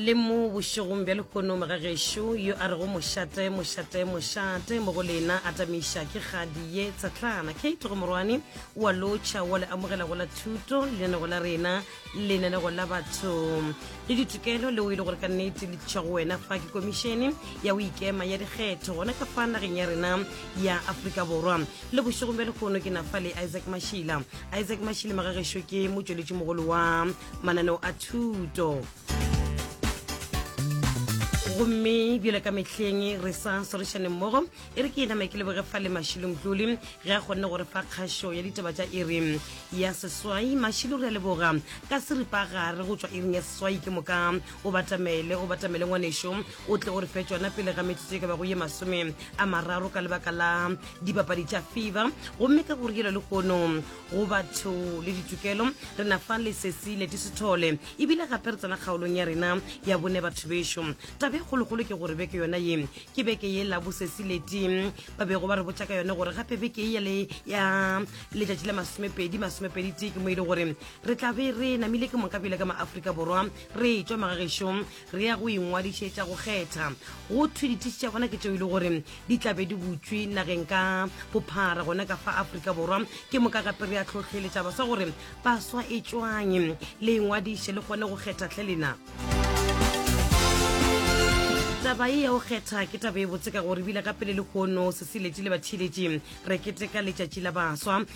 le mo bošegong bja lehono mogagešo yo a rego mošate mošate mošate mo go lena a tameiša ke kgadi ye tsatlana kate go morwane wa lotšha wa le amogela go la thuto lenanego la rena lenanego la batho le ditokelo leo e le gore ka nnete le tliša go wena fa ke komišene ya o ikema ya dikgetho gona ka fa nageng ya rena ya aforika borwa le bošegong bja lehono ke na fa le isaac mašila isaac mašila magagešo ke motšweletši mogolo wa mananeo a thuto gomme bjale ka mehleng re sa sorišane mmogo e re ke ename ke leboge fa le mašilong tlole ge a kgonne gore fa kgašo ya ditaba tša iri ya seswai mašilo re a leboga ka seripa gare go tswa iring ya seswai ke moka o batamele o batamele ngwanešo o tle o re fe tsona pele ga metsotso e ka bago ye masome a mararo ka lebaka la dipapadi tša fiba gomme ka go rielo le kgono go batho le ditokelo re na fa lesesi le tisithole ebile gape re tsena kgaolong ya rena ya bone batho bešo tabe kgolokgolo ke gore beke yona ye ke beke ye la bosesi leti ba bego ba re botša ka yone gore gape beke ye le ya letšatši la masomepedi masomepedi tee ke mo e le gore re tla be re namile ke moka pele ka maaforika borwa re tšwa magagešong Re ya go ingwadišetša go kgetha. Go thwe dithisi tša bona ke tšeo e le gore di tla be di butšwe nageng ka bophara gona ka fa Afrika Borwa. Ke moka gape re ya tlhohleletša baswa gore baswa e tšwang le ingwadiše le kgone go kgetha tlhe lena. taba e ya go kgetha ke taba e botse ka gore bile ka pele le kgono sesiletši le batheeletši re keteka letšatši la baswa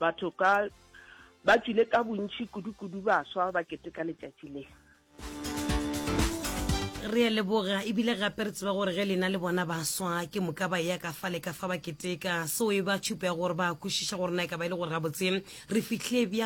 Batho ka ba tswile ka bontši kudu-kudu baswa ba keteka letšatši le. Re a leboga ebile gape re tseba gore ge lena le bona baswa ke moka ba eya ka fa le ka fa ba keteka, seo e ba tšhupo ya gore ba kwešiša gore na e ka ba e le gore gabotse re fihlile bjang